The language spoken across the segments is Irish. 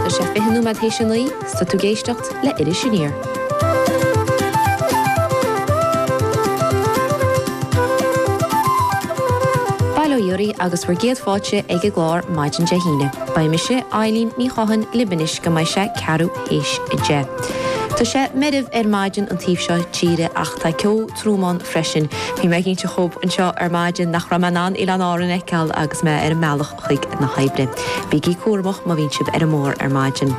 Tá sé fiche nóiméad théis a naoi 's tá tú ag éisteacht le Iris Aniar. Bail ó Dhia oraibh agus bhur gcéad fáilte ag an gclár maidin Dé hAoine. Beidh mise, Eibhlín Ní Chatháin, libh anois go mbeidh sé ceathrú théis a deich. Tá sé meirbh ar maidin an taobh seo tíre ach tá ceo trom ann freisin. Bhí mé ag inseacht dhóibh anseo ar maidin nach raibh mé in ann Oileáin Árann a fheiceáil agus mé ar an mbealach. chuig na hoibre. Bígí cúramach má bhíonn sibh ar an mbóthar ar maidin.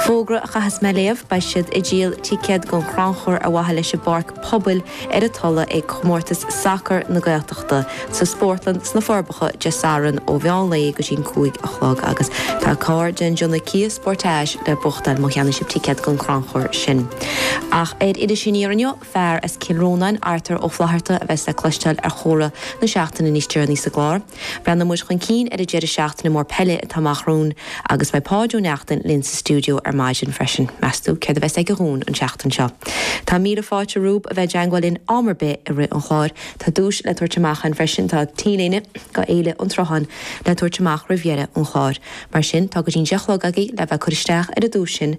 Fógra a chaithfeas mé a léamh, beidh siad ag díol ticéad don chrannchur ar mhaithe leis an bpáirc pobail ar an Tulaigh ag Comórtas Sacair na Gaeltachta sa Spórtlann sna Forbacha Dé Sathairn ó mheán lae go dtí'n cúig a chlog agus tá carr den déanamh Kia Sportage le buachtáil má cheannaíonn sibh ticéad don chrannchur sin ach ar Iris Aniar inniu. Fear as Cill Rónáin, Arthur Ó Flatharta, a bheas le cloisteáil ar Chomhrá na Seachtaine níos deireanaí sa gclár. Breathnóidh muid chun cinn ar an deireadh seachtaine mór peile atá amach romhainn agus beidh Páid Ó Neachtain linn sa stiúideo ar maidin freisin. Meas tú céard a bheas aige dhúinn an tseachtain seo? Tá míle fáilte romhaibh a bheith i dteangmháil linn am ar bith i rith an chláir. Tá duais le tabhairt amach againn freisin. Tá t-léine do Fhéile an tSrutháin le tabhairt amach roimh dheireadh an chláir. Mar sin, tá go dtí'n deich a chlog agaibh le bheith ag cur isteach ar an duais sin.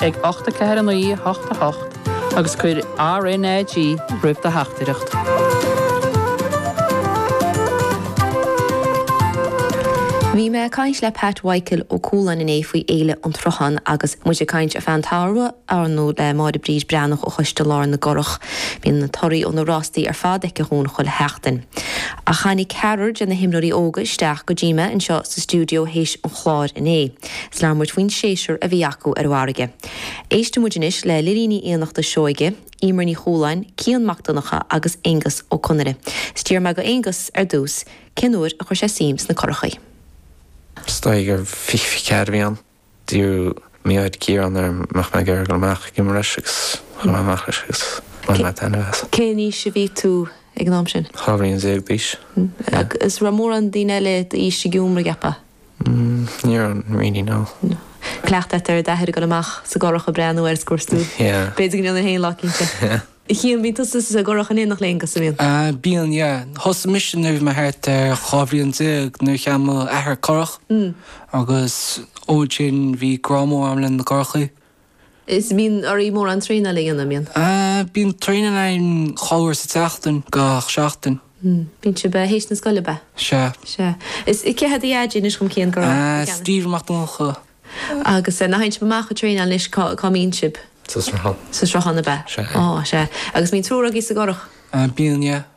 ag 8 4 9 8 8 agus cuir RNAG roimh do theachtaireacht. Bhí mé ag caint le Pat Mhichael Ó Cualáin inné faoi Fhéile an tSrutháin agus muid ag caint ar feadh an tsamhraidh ar ndóigh le Máire Bríd Breathnach ó Choiste Lár na gCurach. Bíonn na torthaí ó na rástaí ar fad aici chugainn chuile sheachtain. Ach tháinig ceathrar de na hiomróirí óga isteach go dtí mé anseo sa stiúideo théis an chláir inné. 's labhair muid faoin séasúr a bhí acu ar an bhfarraige. Éistfidh muid anois le Lilí Ní Fhiannachta Seoige, Emer Ní Chualáin, Cian Mac Donncha agus Aengus Ó Conaire. 'S d'fhiafraigh mé de Aengus, ar dtús, cén uair a chuir sé suim sna curachaí. 'S dóigh gur fiche fiche ceathair a bhí ann. D'iarr m'athair, Ciarán, an mbeadh mé ag iarraidh dul amach ag iomramh leis agus chuaigh mé amach leis agus bhain mé taitneamh as. Cén aois a bhí tú ag an am sin? Dhá bhliain déag d'aois. 'S raibh mórán daoine eile d'aois ag iomramh, an gceapfá? Ní raibh, really, no. Cleachtadh agat ar d'athair ag dul amach sa gcurach ag breathnú air sa gcuartú. Yeah. B'fhéidir go mbíonn an fhéin lá eicínt. Yeah. A Chian, bíonn tusa sa gcurach in éineacht le Aengus, an mbíonn? Ah, bíonn, yeah. Thosaigh mise nuair a bhí mé thart ar dhá bhliain déag nuair a cheannaigh m'athair curach. Mm. Agus ó sin bhí grá mór agam le na gcurachaí. Is mbíonn oraibh mórán traenáil a dhéanamh, an mbíonn? Bíonn traenáil againn dhá uair sa tseachtain gach seachtain. Bíonn sibh théis na scoile, ab ea? Sea. Sea. Is cé hé do dhaidí anois dhom, Cian? Ó, Stephen Mac Donncha. Agus nuair a théann sibh amach ag traenáil anois cá mbíonn sibh? Sa Sruthán. Sa Sruthán, ab ea? Sea. Sea. Agus mbíonn triúr agaibh sa gcurach? Bíonn, yeah.